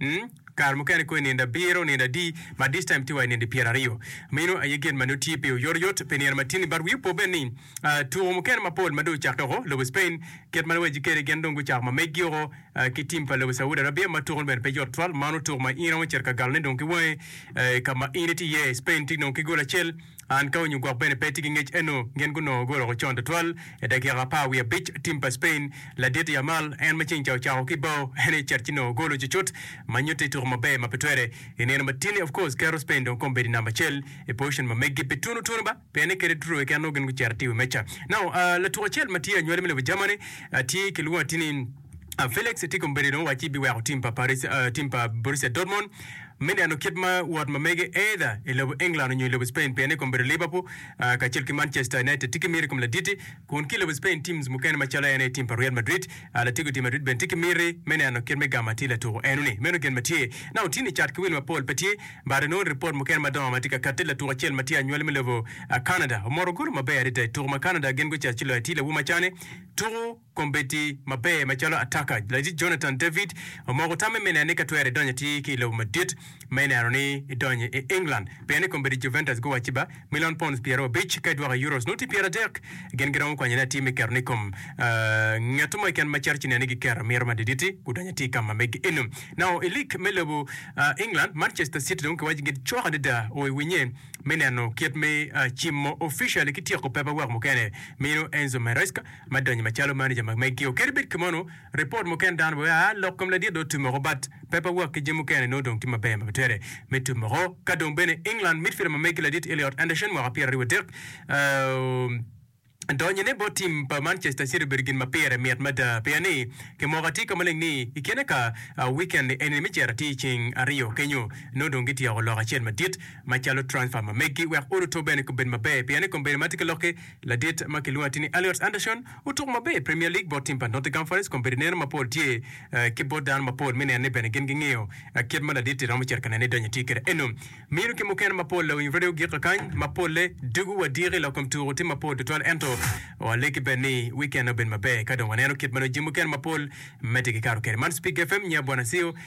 Umm kare mukene kong inindo abiro, onindo adi but this time tye wa inindo pyera aryo. Meno aye gin ma nongo tye pi oyoto yot pi nino matini but wi opo bene ni aah tuko mukene mapol ma dong ocakke oko lobo Spain kit ma luwacci kede gin dong gucako ma meggi oko ki team pa lobo Saudi Arabia ma tuko ne bene pe yot twal mano tuko ma in iromo cito ka galone dong ki wangi eeh ka ma in itye iye Spain tye dong ki gol acel An ka onyo gwok bene pe tye ki ngec eno gin gunongo guroko con twatwal i dakika apar wiye abic tim pa Spain ladit Yamal en ma ceng ca ocako ki bao en aye cet ki nongo golo cucut ma nyutte ituko maber ma pe twere i nino ma tini of course keto Spain dong kombedi i namba acel i position ma megi pe tunu tunu ba pienne kede tuturu keken nongo gin gucito atir i wi meca now aa latuko acel ma tye anywali me lobo Germany tye kilwongo atini A Felix tye kombeddi dong wacci biweko tim pa Paris, uh, tim pa Borussia Dortmund me neno kit ma wot ma mege either i lobo England onyo i lobo Spain pienne kombeddi Liverpool uh, kacel ki Manchester United tye ki miti i kom laditi kun ki i lobo Spain teams mukene macalo en aye tim pa Real Madrid uh, lateggo tim Madrid bene tye ki miti me neno kit me gamo atir latuko eno ni meno gen ma tye na otini i cat ki wil mapol pe tye but inongo report mukene madongo ma tye ka katti latuk acel ma tye anywali me lobo uh, Canada omoto golo maber adada i tuko ma Canada gin gucito ci loyo atir lawu macane tuko kombeddi maber macalo ataka. Lajij Jonathan David omoko tamme me nen ni ka twere idonyo atir ki i lobo madit ma ineno ni idonyo i England. Pien ni kombeddi Juventus guwacci ba milion pounds pyeraryo abic ka idwoko i Euros nongo tye pyeradek, gin giromo kwanyone atir me ketone i kom ngeto mo keken ma cito ci neno ni giketo mito madiditi gudonyo atir ka ma megi eno. Nao i lig me lobo England, Manchester City dong kiwaco gin cok adada o i winye me neno kit me cimo official ki tyeko paperwork mukene mino Enzo Maresca. ma donyo macalo manager ma meggi o keri bed kimono report mo ken dano wea lok kom ladit do tumoko but paper work ki jami mukene nongo dong tye maber ma bitere me tumoko ka dong bene England midfielder ma meggi ladit Elliot Anderson mwaka pyera aryo wa dek o donyo ne bot team pa Manchester City obedo gin ma pire mit mada pien ni ki moko atir ka maleng ni i kine ka weekend ni enini me cito atir ceng aryo kenyo nongo dong gityeko lok acel madit macalo transfer ma meggi wek oruto bene kobed maber pien ni kombeddi ma tye ki loki Ladit ma kilwongo atir ni Elliot Anderson otuko maber i Premier League bot tim pa Nottingham Forest kun bedo neno mapol tye ki bot dano mapol me neno ni bene gin gingiyo kit ma ladit-ti romo cito ka nene ni donyo tye kede eno. Mino ki mukene mapol lawiny radio gikka kany ma polle dugo wa diki lok kom tuko tye mapol tutwal ento walegi bene ni wikenne obed maber ka dong waneno kit ma nongo jami mukene mapol medde gikato kede. Man Spig FM, Nyi Abwana Ceo.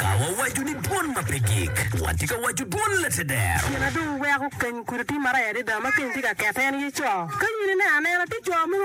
Ka wawaco ni dwon ma pe gik, watye ka waco dwon Lateder. Gin ma dong weko keny kudi timmarer adada ma keny tye ka kette en aye co. Ka in ineno anena, tye co mogo ma.